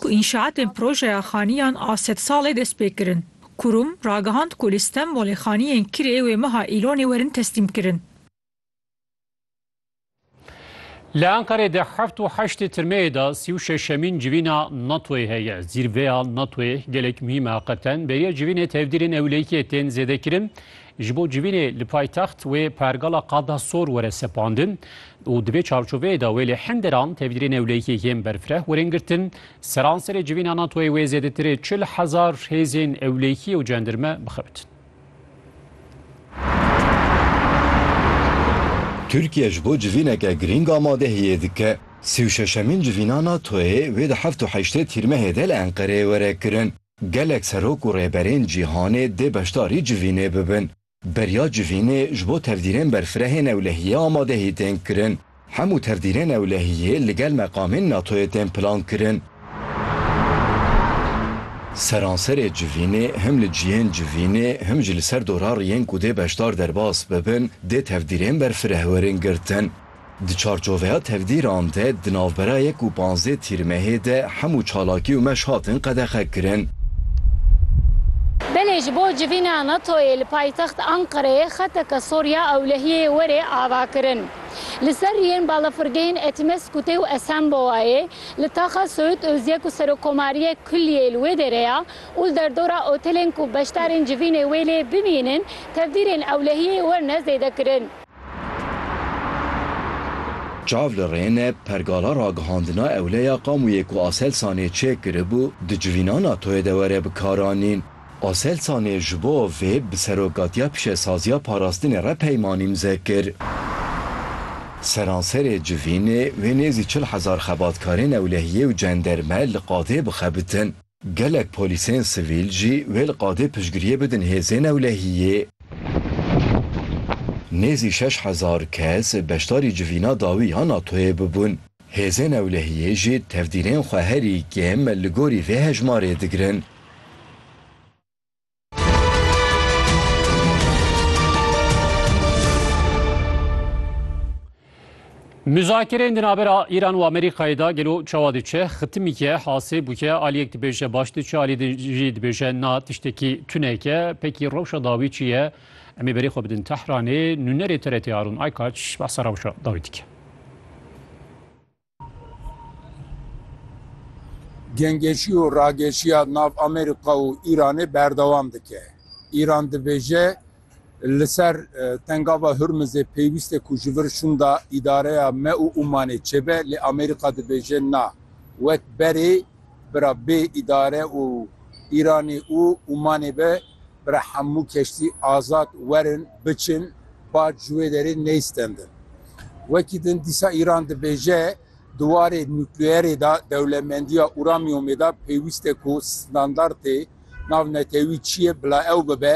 ku înşaatên projeya xaniyan a sedsalê dest pê kirin. Kurum, ragihand ku li Stenbolê xaniyên kirê wê meha Îlonê werin teslîm kirin. Li Enqerê di heft û heştê tirmeyê de sî û şeşemîn civîna NATO'yê heye. Zîrveya NATO'yê gelek muhîm e. Heqeten beriya civînê tevdîrên ewlehiyê tên zêdekirin. Ji bo civînê li paytext wê pergala Qada Sor were sepandin û di vê çarçoveyê de wê lê hinderan tevîdirên ewlehiyê yên berfireh werin girtin. Seranserê civîna NATO'yê wê zêdetirê çil hezar hêzên ewlehiyê û cendirme bixebitin. Tirkiye ji bo civîneke girîng amadehiyê dike. Sî û şeşemîn civîna NATO'yê wê di heft û heştê Tîrmehê de li Enqereyê were kirin. Gelek serok û rêberên cîhanê dê beşdarî civînê bibin. Beriya civînê ji bo tevdîrên berfirehên ewlehiyê amadehî tên kirin. Hemû tevdîrên ewlehiyê li gel meqamên NATO'yê tên plankirin. Seranserê civînê him li cihên civînê him jî li ser dora riyên ku dê beşdar derbas bibin dê tevdîrên berfireh werin girtin. Di çarçoveya tevdîran de di navbera yek û panzdeh Tîrmehê de hemû çalakî û meş hatin qedexekirin. Belê ji bo civîna NATO'yê li paytext Anqereyê xeteke sor ya ewlehiyê were avakirin. Li ser riyên balafirgehên Etimesgutê û Esenbowayê li taxa Söğüt Özyek û Serokomariyê kulliyê li wê derê ya û li derdora otelên ku beşdarên civînê wê lê bimînin tevdîrên ewlehiyê werne zêdekirin. Çav li rêne pergala ragihandina ewleya Kamûyê ku Aselsanê çêkiribû di civîna NATO'yê de were bikaranîn. Aselsanê ji bo vê bi Serokatiya Pişesaziya Parastinê re peymanî imze kir. Seranserê civînê wê nêzî çil hezar xebatkarên ewlehiyê û cenderme li qadê bixebitin. Gelek polîsên sivîl jî wê li qadê piştgiriyê bidin hêzên ewlehiyê. Nêzî şeş hezar kes beşdarî civîna dawî ya NATO'yê bibûn. Hêzên ewlehiyê jî tevdîrên xwe herî kêm li gorî vê hejmarê digirin. Müzakereyên di navbera Îran û Amerîkayê de gelo çawa diçe, xitimîke, hasê bûke, aliyek dibêje baş diçe, alî jî dibêje na tiştekî tuneke, pekî rewşa dawî çi ye? Em ê berê xwe bidin Tehranê, nûnerê TRT Harûn Aykaç behsa rewşa dawî dike. Gengeşî û rageşiya nav Amerîka û Îranê berdewam dike. Îran dibêje li ser Tengava Hurmizê pêwîst e ku ji vir şûnda îdareya me û Ûmanê çêbe lê Amerîka dibêje na, wek berê bira bê îdare û Îranê û Ûmanê be Bira hemû keştî azad werin biçin bar ji wê derê neyistendin. Wekî din dîsa Îran dibêje di warê nukleerê de dewlemendiya uramyomê de pêwîst e ku standartê navnetewî çi ye bila ew bibe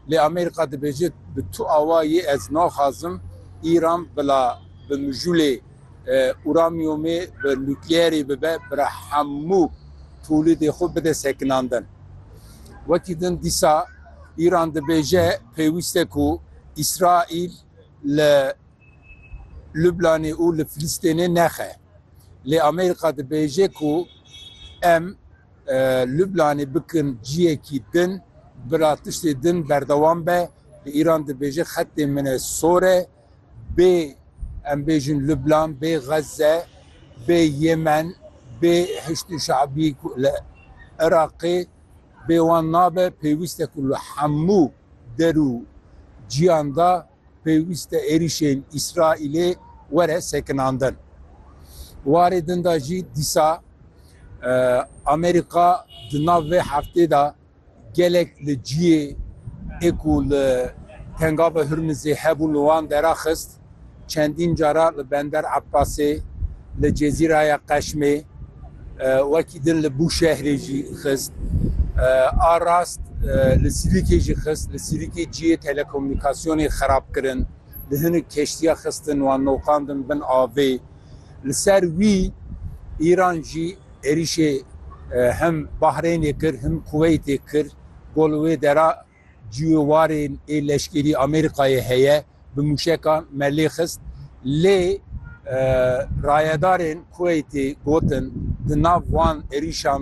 lê Amerîka dibêje bi tu awayî ez naxwazim Îran bila bi mijûlê Uramyumê bi nukleyerê bibe bira hemû tolîdê xwe bide sekinandin. Wekî din dîsa Îran dibêje pêwîst e ku Îsraîl li Lublanê û li Filistênê nexe. Lê Amerîka dibêje ku em Lublanê bikin ciyekî din bira tiştê din berdewam be. Lê Îran dibêje xetê min e sor e. bê em bêjin Lubnan, bê Xezze, bê Yemen, bê Hişdî Şabî ku li Iraqê bê wan nabe, pêwîste ku li hemû der û cîyan de pêwîste êrîşên Îsraîlê were sekinandin. Warê din de jî dîsa Amerîka di nav vê heftê de, Gelek li ciyê ê ku li Tengava Hurmizê hebûn li wan deraxist, çendîn cara li Bender Ebbasê, li Cezîraya Qeşmê, wekî din li Bûşehrê jî xist. A rast li Sirîkê jî xist. Li Sirîkê ciyê telekomûnîkasyonê xerab kirin. Li hinek keştiya xistin wan noqandin bin avê. Li ser wî Îran jî êrîşê him Bahrêynê kir him Kuweytê kir. Ku li wê dera ciyê warên ê leşkerî Amerîkayê heye bi mûşekan me lê xist. Lê rayedarên Kuweytê gotin di nav wan êrîşan